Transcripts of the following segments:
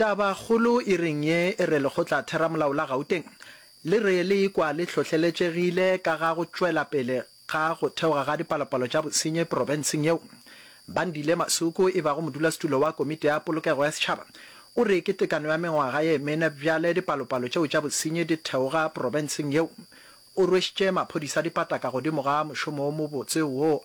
Tabakgolo e reng ye e re Lekgotlatheramolao la Gauteng le re le ikwa le hlohleletšegile ka ga go tšwelapele ga go theoga ga dipalopalo tša bosenyi profenseng yeo. Bandile Masuku e bago modulasetulo wa Komiti ya Polokego ya Setšhaba o re ke tekano ya mengwaga ye mene bjale dipalopalo tšeo tša bosenyi di theoga profenseng yeo. O rwešitše maphodisa dipataka godimo ga mošomo wo mobotse wo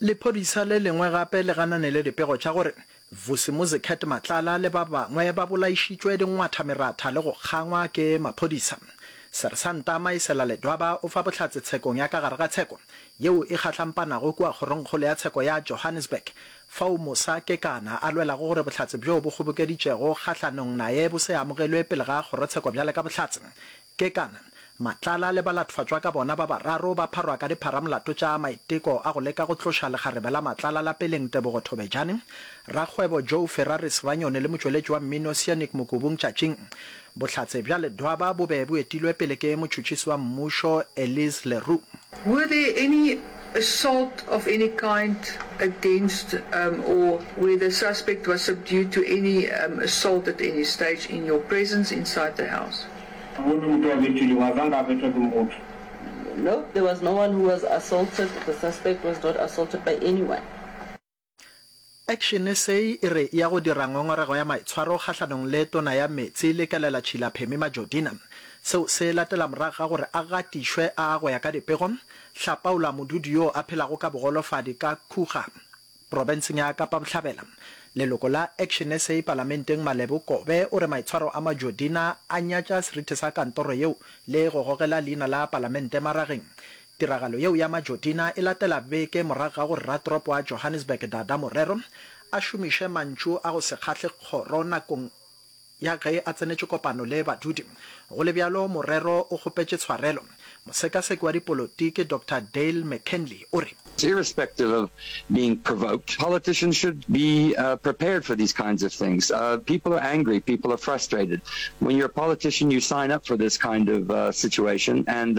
Lephodisa le lengwe gape le gananele dipego tša gore Vusimuzi Cat Matlala le ba bangwe ba bolaišitšwe dingwatha-meratha le go kgangwa ke maphodisa. Sersanta Maisela Ledwaba o fa bohlatse tshekong ya ka gare ga tsheko yeo e kgahlampanago kua kgorongkgolo ya tsheko ya Johannesburg fao Musa Kekana a lwelago gore bohlatse bjo bo kgobokeditšego kgahlanong naye bo se amogelwe pele ga kgorotsheko bjale ka bohlatse Kekana, Matlala le balatofacwa ka bona ba bararo ba pharwa ka dipharamolato tša maiteko a go leka go tloša lekgarebe la Matlala lapeleng Tebogo Thobejane, rakgwebo Joe Ferraris Ranyoni le motšweletši wa mmino Sianik Mokubung tšatšing. Bohlatse bja Ledwaba bo be bo etilwe pele ke motšhotšhisi wa mmušo Elise Le Roux. Were there any assault of any kind against um or where the suspect was subdued to any um assault at any stage in your presence inside the house? Ga go na motho a betilwego, a zanka a betwa ke motho. No, there was no one who was assaulted, the suspect was not assaulted by anyone. Action sa e re ya go dira ngongorego ya maitshwaro kgahlanong le Tona ya Meetse Lekelela Tšhila Phemi Majodina. Seo se latela morago ga gore a gatišwe a go ya ka dipego Hlapaola Modudu yoo a phelago ka bogolofadi ka Khuga, Profenseng ya Kapa Bohlabela, leloko la Action SA palamenteng Malebo Kobe o re maitshwaro a Majodina a nyatša seriti sa kantoro yeo le go gogela leina la palamente marageng. Tiragalo yeo ya Majodina e latela beke morago ga gore ratoropo wa Johannesburg Dada Morero a šomiše mantšu a go se kgahle kgoro nakong Ya ge a tsenetše kopano le badudi, go le bjalo morero o kgopetše tshwarelo. Mosekaseki wa dipolotiki Doctor Dale McKinley o re. Irrespective of being provoked, politicians should be prepared for these kinds of things. People are angry, people are frustrated. When you're a politician, you sign up for this kind of situation and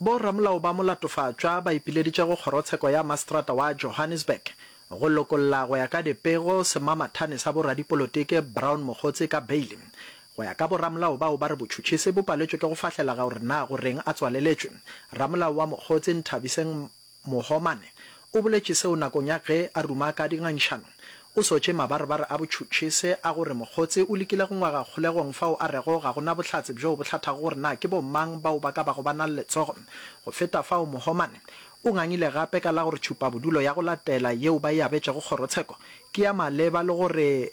Bo ramolao ba molatofatšwa ba ipileditše go kgorotsheko ya mastrata wa Johannesburg go lokolla go ya ka dipego semamathane sa bo radipolotiki Brown Mogotsi ka beile. Go ya ka bo ramolao bao ba re botšhutšhisi bo paletšwe ke go fahlela gaore na go reng a tswaleletšwe. Ramolao wa Mogotsi Nthabiseng Mohomane o boletše seo nakong ya ge a ruma ka dingangišanong. O sotše mabarebare a botšhutšhise a gore Mokgotse o lekile go ngwaga kgolegong fao a rego ga go na bohlatse bjoo bo hlathago gore na ke bo-mang bao ba ka bago ba na le letsogo. Go feta fao, Mohomane o ngangile gape ka la gore tšhupabodulo ya go latela yeo ba e abetšego kgorotsheko ke ya maleba le gore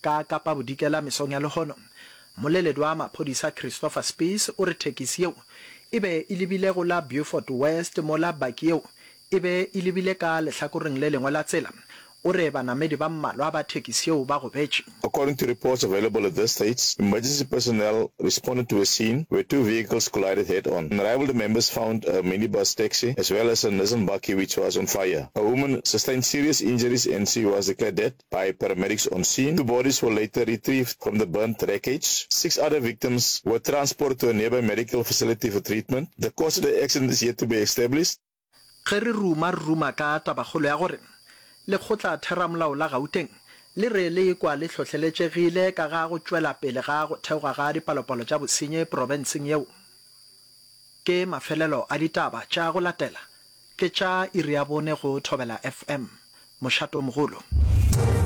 Ka Kapa Bodikela mesong ya lehono, mmoleledi wa maphodisa Christopher Spies o re thekisi yeo e be e lebile go la Beaufort West mola baki yeo e be e lebile ka lehlakoreng le lengwe la tsela. O re banamedi ba mmalwa ba thekisi yeo ba gobetše. According to reports available at this stage, emergency personnel responded to a scene where two vehicles collided head-on. Unrivaled members found a minibus taxi as well as a Nissan bakkie which was on fire. A woman sustained serious injuries and she was declared dead. By paramedics on scene, two bodies were later retrieved from the burnt wreckage. Six other victims were transported to a nearby medical facility for treatment. The cause of the accident is yet to be established. Ge re ruma re ruma ka tabakgolo ya gore Lekgotlatheramolao la Gauteng le re le ekwa le hlohleletšegile ka ga go tšwela pele ga go theoga ga dipalopalo tša bosenyi profenseng yeo. Ke mafelelo a ditaba tša go latela Ke tša iri ya bone go Thobela FM, Mošatomogolo.